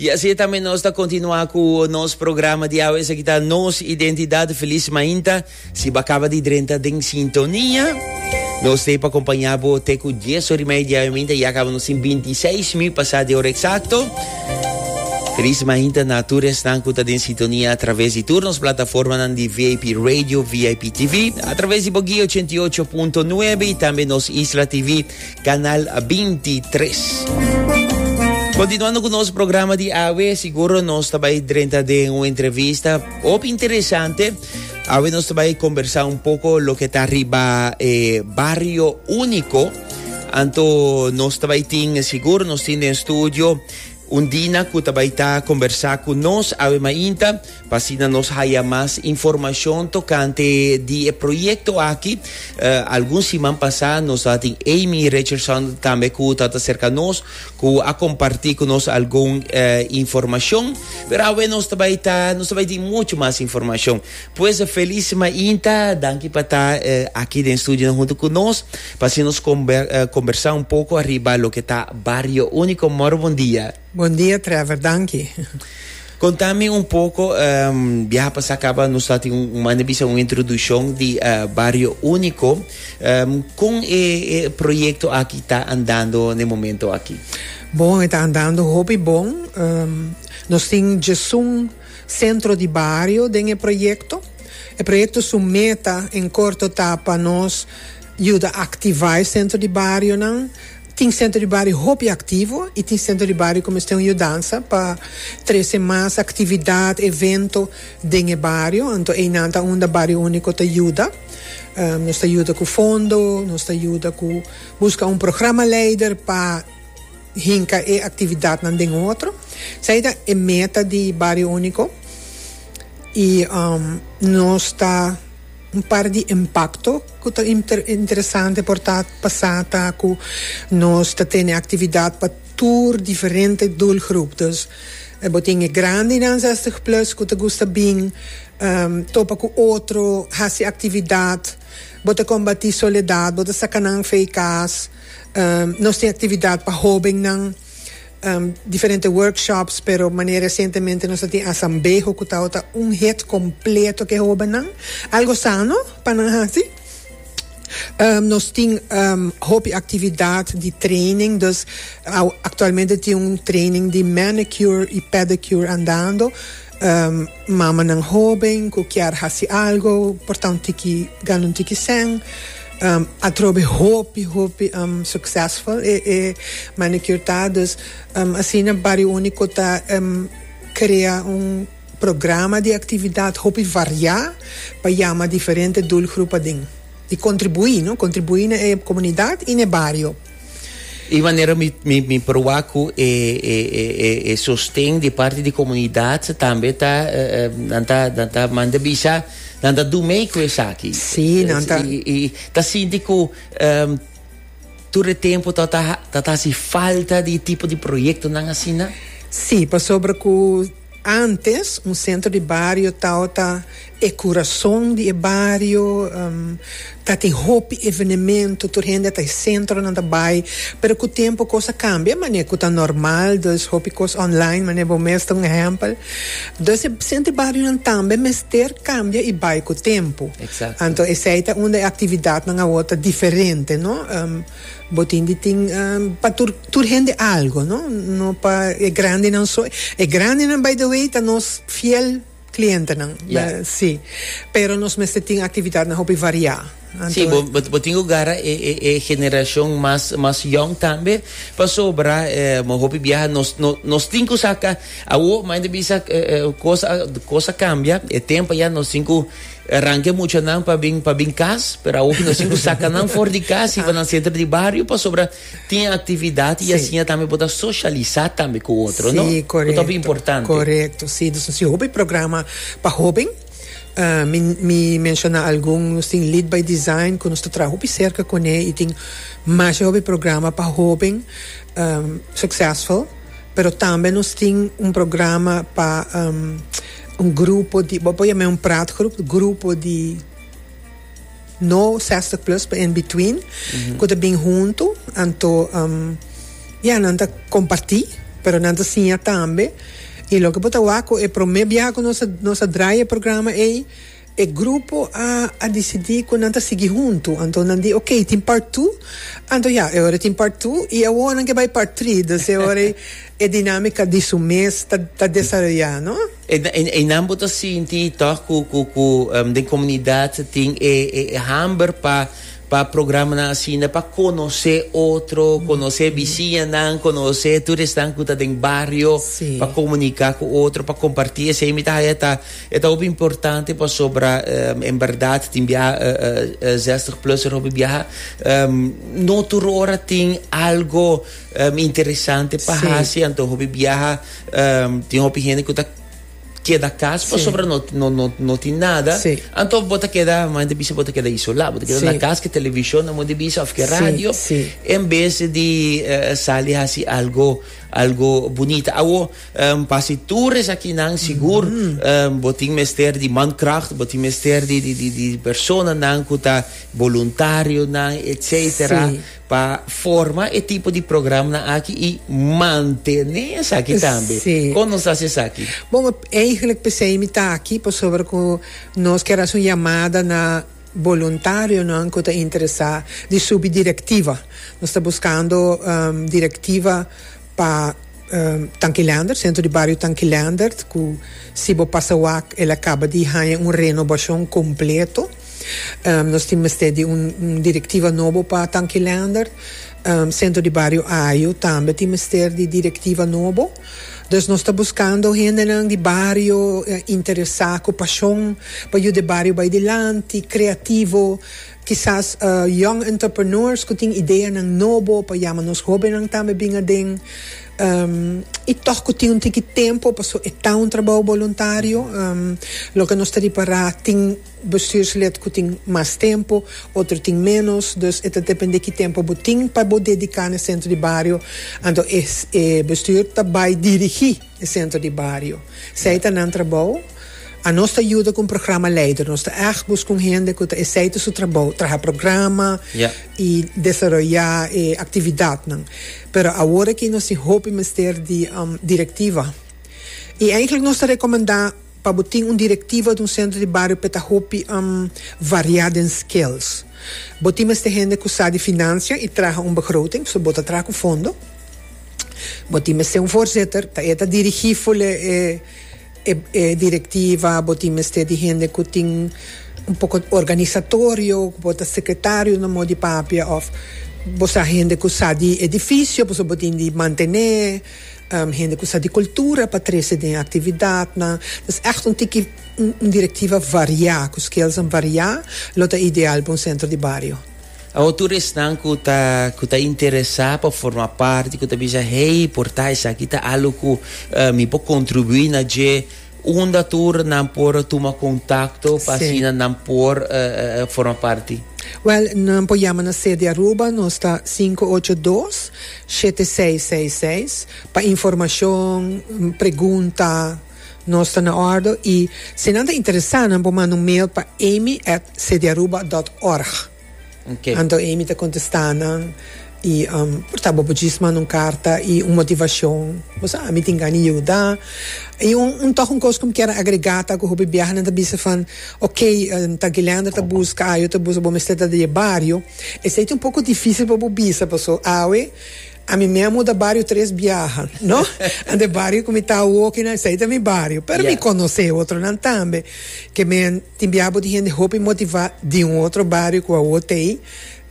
Y así tambe nos ta continua cu nos programa di awe. Esaki ta Nos Identidad. Feliz mainta. Si bo caba di drenta den sintonia, nos te pa acompaña bo te cu 10 ora y media di awe mainta. Ya caba nos tin 26 min pasa di ora exacto. Feliz mainta na tur esnan cu ta den sintonia a través di tur nos plataformanan di VIP Radio, VIP TV, a través di Boguí 88.9 y tambe nos Isla TV. Canal 23. Continuando cu nos programa di awe, siguro nos ta bay drenta den un entrevista op interesante. Awe nos ta bay conversa un poco lo que ta riba eh, barrio único. Anto nos ta bay tin, siguro nos tin den studio Undina cu ta bay ta combersa cu nos awe mainta pa asina nos haya mas informacion tocante di e proyecto aki. Algun siman pasa nos a tin Amy Richardson tambe cu ta ta cerca nos cu a comparti cu nos algun informacion. Pero awe nos ta bay ta, nos ta bay tin mucho mas informacion. Pues e Feliz mainta, danki pa ta aki den studionan huntu ku nos, pa así nos kombersá un poko ariba loke ta Barrio Úniko. Mor, bondia. Bondia Trevor, danki. Konta mi un poko, biaha pasá kaba nos ta tin un manda bisa un introdushon di Barrio Úniko. Kon e proyekto aki ta andando na e momento aki? Bon, e ta andando hopi bon. Nos tin djesun. Centro di Bario den e proyecto. E proyecto su meta en corto ta pa nos yuda activa e centro di barionan. Tin centro di bario hopi activo y tin centro di bario cu mester un yudansa pa trece mas actividad, evento den e bario. Anto eynan ta unda Bario Unico ta yuda. Nos ta yuda cu fondo, nos ta yuda cu busca un programa leider pa. Hinka e aktividatnan den otro. Esei ta e meta di Bario Úniko i nos ta un par di impakto ku ta interesante por ta pasá ta ku nos ta tene aktividat pa tur diferente doelgroep. Dus bo tin e grandenan zestig plus ku ta gusta bin topa ku otro, hasi aktividat. Bo ta kombatí soledat, bo ta saka nan afe kas. Nos tin actividad pa hobennan, diferente workshops, pero manera recientemente nos a tin asambeho cu tabata un hit completo cu e hobennan. Algo sano pa nan haci. Nos tin hopi actividad di training, dus actualmente tin un training di manicure y pedicure andando. Mamanan hóben ku kier hasi algu, portá un tiki, gana un tiki sèn. Atrobe hopi, hopi suksèsful e e manicure ta. Dus asina Bario Úniko ta krea un programa di aktividat hopi variá pa yama diferente dulgrupanan i kontribuí, no, kontribuí na e komunidat i na e bario. E manera mi mi proba cu e e e e e sosten di parte di comunidad tambe ta nan ta nan ta manda bisa nan ta do mee cu esaki. Sí, nan ta. Y, y ta sinti cu um, tur e tempo ta ta ta ta haci falta di tipo di proyectonan asina? Sí, pasobra cu Antes, un sentro di bario taota e kurason di e bario, tatin hopi evenemento, tur hende ta e sentro nan ta bai, pero ku tempo kos a kambia mane ku ta normal, dus hopi kos online mane bo mes ta un ehèmpel, dus e sentro di bario nan tambe mester kambia i bai ku tempo, anto esei ta unda e aktividatnan awor ta diferente, no. Bo tin di tin pa tur tur hende algo no no pa e grandenan so e grandenan by the way ta nos fiel clientenan Ya. si pero nos mester tin actividadnan hopi variá Si anto bo bo bo tin ku gara e e e generashon mas mas yong tambe pasobra e mo hopi biaha nos no nos tin ku saka awo main ta bisa e e kos a kos a kambia e tempo ya nos tin ku E ranke muchanan pa bin pa bin cas, pero awor cu nos tin cu saca nan for di cas y pa nan centro di bario pasobra tin actividad y asina tambe por ta socialisa tambe cu otro, no? Si, correcto. Cu ta hopi importante. Correcto, si. Dus nos tin hopi programa pa hoben. Um, mi, mi menciona algun. Nos tin Lead by Design cu nos ta traha hopi cerca cune y tin masha hopi programa pa hoben, um, succesful. Pero tambe nos tin un programa pa, um. Un grupo di, bo por yam'é un praatgroep, grupo di no sestig plus pa en between ku ta bin huntu anto ya nan ta kompartí pero nan ta siña tambe i loke bo ta wak ku e promé biaha ku nos a nos a draya e programa ei E grupo a a disidí ku nan ta sigui huntu, anto nan di ok, tin part tu, anto ya, e ora tin part tu i awor nan ke bai part tri, dus e ora ei e dinámika di su mes ta ta desaroyá, no? E e e nan bo ta sinti tòg ku ku ku den komunidat tin e e e hamber pa pa programanan asina pa konosé otro, konosé bisiñanan, konosé tur esnan ku ta den bario, pa komuniká ku otro, pa kompartí esei mi ta haña ta E ta hopi importante pasobra en berdad tin biaha zestig plusser hopi biaha. No tur ora tin algo interesante pa hasi anto hopi biaha tin hopi hende ku ta keda kas pasobra no tin nada anto bo ta keda maya ta bisa bo ta keda isola bo ta keda na kas ke television amo ta bisa of ke radio en bes di sali hasi algo algo bunita. Awo Pa si tur esakinan sigur bo tin mester di mankracht, bo tin mester di di di personanan ku ta boluntarionan etsetera Sí. pa forma e tipo di programnan aki i mantené esaki tambe. Sí. Kon nos ta hasi esaki? Bon, eigenlijk p'esei mi ta aki pasobra ku nos ker hasi un yamada na boluntarionan ku ta interesá di subi direktiva. Nos ta buskando direktiva. Pa Tankilander, Sentro di Bario Tankilander ku si bo pasa wak el a kaba di haña un renobashon kompleto. Nos tin mester di un direktiva nobo pa Tankilander. Sentro di Bario Ajo tambe tin mester di direktiva nobo. Dus nos ta buskando hendenan di bario interesá ku pashon pa yuda e bario bai dilanti, kreativo. Kisas young entrepreneurs ku tin ideanan nobo pa yama nos hóbennan tambe bin aden i tòg ku tin un tiki tempu pasobra e ta un trabou boluntario. Loke nos ta ripará tin bestùrslid ku tin mas tempu, otro tin ménos. Dus e ta dependé ki tempu bo tin pa bo dediká na e sentro di bario. Anto e bestùr ta bai dirigí. e sentro di bario. Esei ta nan trabou. A nos ta yuda ku un programa leider. Nos ta ègt buska un hende ku ta esei ta su trabou, traha programa i desaroyá e aktividatnan. Pero awor aki nos tin hopi mester di direktiva. I eintlik nos ta rekomendá. Pa bo tin un direktiva di un sentro di bario pa e ta hopi variá den skills. Bo tin mester hende ku sa di finansia i traha un begroting, so bo ta traha ku fondo. Bo tin mester un voorzitter, ta e ta dirigí ful e direktiva. Bo tin mester di hende ku tin un poko organisatorio, ku por ta sekretario na mo di papia òf bo sa hende ku sa di edifisio, pasobra bo tin di mantené. Hende ku sa di kultura pa trese den aktividatnan. Nos ègt un tiki un direktiva variá, ku skelsan variá, lo ta ideal pa un sentro di bario. Awor tur esnan ku ta ku ta interesá pa forma parti, ku ta bisa, Hey, por ta esaki ta algu ku mi por kontribuí na dje. Unda tur nan por tuma kontakto pa asina nan por forma parti? Wèl, nan por yama na sede Aruba, nos ta sinku ocho dos, shete seis seis seis, pa informashon, pregunta, nos ta na òrdu i si nan ta interesá nan por manda un mail pa amy at sedearuba dòt òrg. Anto Amy ta contesta nan, y por ta bo por djis manda un carta y un motivacion, bo sa ami tin gana yuda, y un toch un cos cu mi kier agrega ta cu hopi biaha nan ta bisa fan ok ta Gilander ta busca awe ta busca bo mester ta den e bario, esey ta un poco dificil pa bo bisa paso awe ami me a muda bario tres biaha no, anto e bario cu mi ta awo kina esey ta mi bario, pero mi conoce e otro nan tambe ke men. Tin biaha bo tin hende hopi motivá di un otro bario ku awor ta ei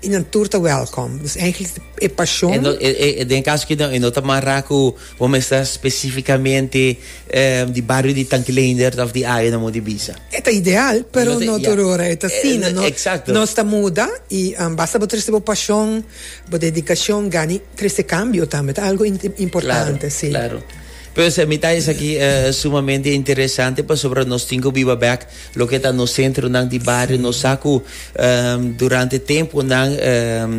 i nan tur ta wèlkòm. Dus èinklik e pashon. E den e kaso aki no, e no ta mará ku bo mester spesifikamente di bario di Tankileindert òf di área na Mondi Bisa. E ta ideal, pero no tur ora e ta asina. Nos ta muda i basta bo trese bo pashon, bo dedikashon, gani trese kambio tambe. Ta algu importante, sí. Pues mi ta esaki sumamente interesante pasobra nos tin cu biba bek loke ta nos centronan di bario. Nos sa cu durante temponan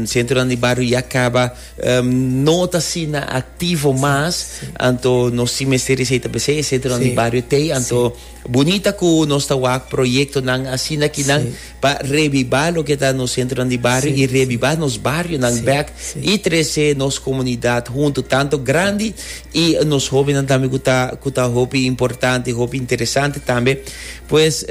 centronan di bario ya caba no ta asina activo mas. Anto nos tin mester esey ta besey e centronan di bario tey. Anto Bunita ku nos ta wak proyektonan asina ki nan pa rebiba loke ta nos sentronan di bario i rebiba nos barionan bèk i trese nos komunidat huntu tantu grandi i nos hóbennan tambe ku ta ku ta hopi importante hopi interesante tambe pues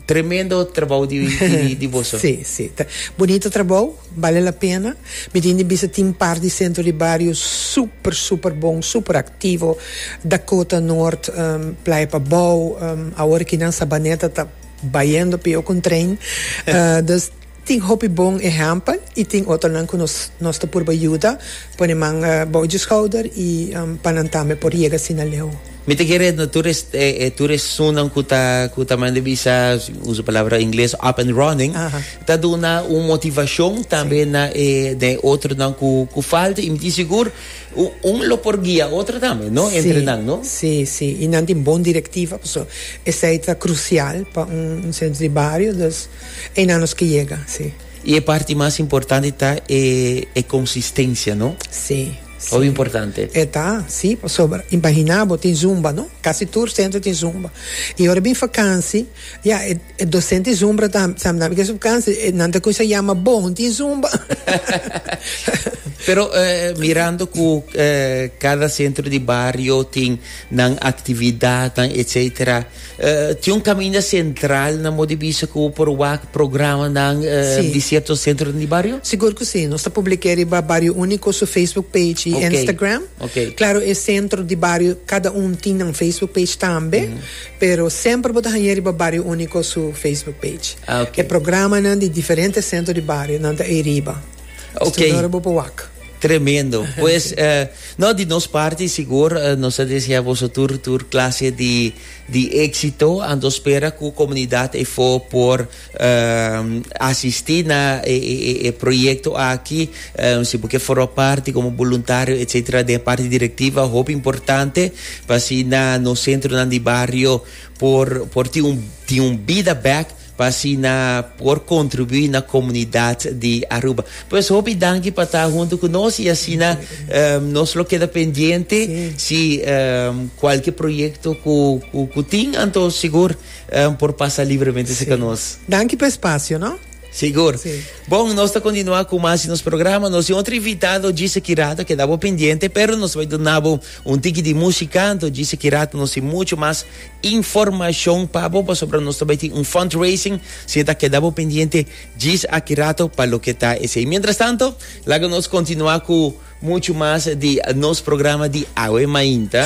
tremendo trabou di boso. Sí, sí. Bunito trabou. Bale la pena. Mi tin di bisa tin par di sentro di bario super super bon, super activo, Dakota Noord, Playa Pabao, awor aki nan Sabaneta ta bayendo peo con trein. Dus tin hopi bon ehempel y tin otronan cu nos nos ta purba yuda, pone man bou dje schouder y pa nan tambe por yega asina leu. Mi ta kere no tur e e tur e sunnan ku ta ku ta manda bisa uso palabra ingles up and running ta duna un motivashon tambe na e den otronan ku ku falta i mi tin sigur un un lo por guia otro tambe no entre nan no. Si si i nan tin bon direktiva paso esei ta krusial pa un un sentro di bario dus einan nos ke yega si. I e parti mas importante ta e e konsistensia no. Si. Hopi importante. E ta, si, pasobra imaginá bo tin zumba, no? Kasi tur sentro tin zumba. I ora bin fakansi, ya, e, e dosent di zumba ta, sa nan ke su vakansi, e, nan ta kumsa yama bo, un tin zumba. Pero eh, mirando ku eh, kada sentro di bario tin nan aktividatnan, etsetera, Tin un kaminda sentral na modi bisa ku bo por wak programanan di sierto sentronan di bario? Sigur ku si. Nos ta publik'é riba Bario Úniko su Facebook page i Instagram. Klaru e sentro di bario kada un tin nan Facebook page tambe, pero semper bo ta hañ'é riba Bario Úniko su Facebook page. E programanan di diferente sentro di bario nan ta ei riba. Ston ora bo por wak. Tremendo. Pues no di nos parti sigur nos ta desea boso tur tur clase di di exito. Anto spera cu comunidad efo por asisti na e e e proyecto aki. Si bo ke forma parti como boluntario etcetera den e parti directiva hopi importante pa asina nos centronan di barrio por por tin un tin un bida bek. pa asina por kontribuí na komunidat di Aruba. Pues hopi danki pa ta huntu ku nos i asina um, nos lo keda pendiente si um, kualke proyekto ku, ku, ku tin, anto sigur um, por pasa libremente serka nos. Danki pa espasio, no? Sigur. Sí. Bon, nos ta continua cu más nos programa. Nos otro invitado, Gise Kirato, que dabo pendiente, pero nos va a donabo un tiki di musicanto. Gise Kirato nos y mucho más Informacion pa bo pasobra nos ta bay tin un fundraising, si ta keda bo pendiente djis aki rato pa loke ta esey. Mientras tanto laga nos continua cu mucho mas di nos programa di awe mainta.